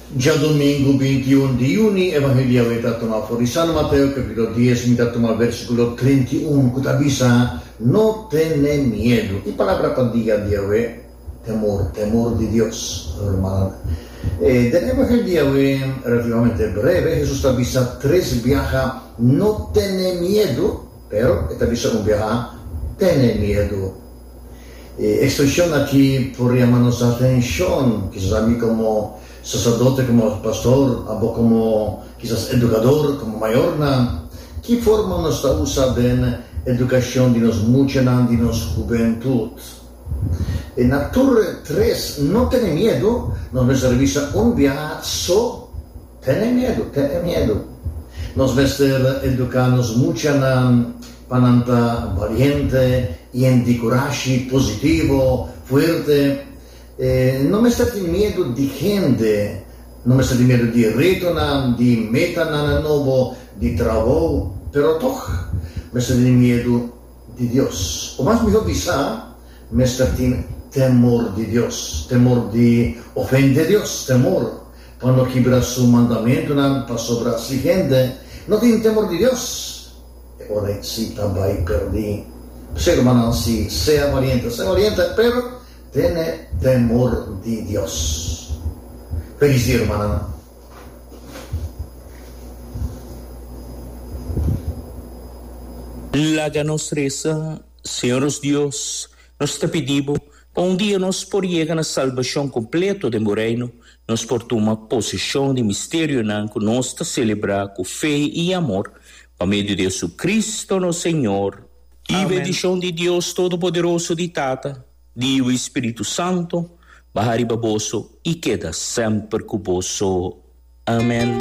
Djadomingu binti i un di juni, Evangelio awe ta tuma for di San Mateo kapitulo dies, mi ta tuma versikulo treinta i un ku ta bisa, No tene miedu. E palabra pa dia di awe, temor, temor di Dios, hermananan. Den Evangelio di awe, relativamente breve, Hesus ta bisa tres biaha, No tene miedu, pero E ta bisa un biaha, Tene miedu. E ekspreshon aki por yama nos atenshon, kisas ami komo saserdote, komo pastor, abo komo kisas edukador, komo mayornan. Ki forma nos ta usa den edukashon di nos muchanan, di nos hubentut? E na tur tres, no tene miedu, nos mester bisa un biaha so. Tene miedu, tene miedu. Nos mester eduká nos muchanan pa nan ta baliente, hende kurashi, positivo, fuerte. No mester tin miedu di hende, no mester tin miedu di retonan, di metanan nobo, di trabou, pero tòg mester tin miedu di Dios. O mas mihó bisá, mester tin temor di Dios, temor di ofende Dios, temor Pa no kibra su mandamentunan, pasobra si hende no tin temor di Dios, e ora ei sí ta bai perdí. P'esei, rumannan, sí, sea bariente, sea bariente, pero tene temor di Dios. Felis dia, rumannan. Laga nos resa. Señor nos Dios, nos ta pidi bo. Pa un dia nos por yega na salbashon kompleto den bo Reino, nos por tuma poseshon di misterionan ku nos ta selebrá ku fe i amor, pa medio di JesuCristo nos Señor. I bendishon di Dios Todopoderoso, di Tata, di Yiu i Spiritu Santo, baha riba boso i keda semper ku boso. Amen.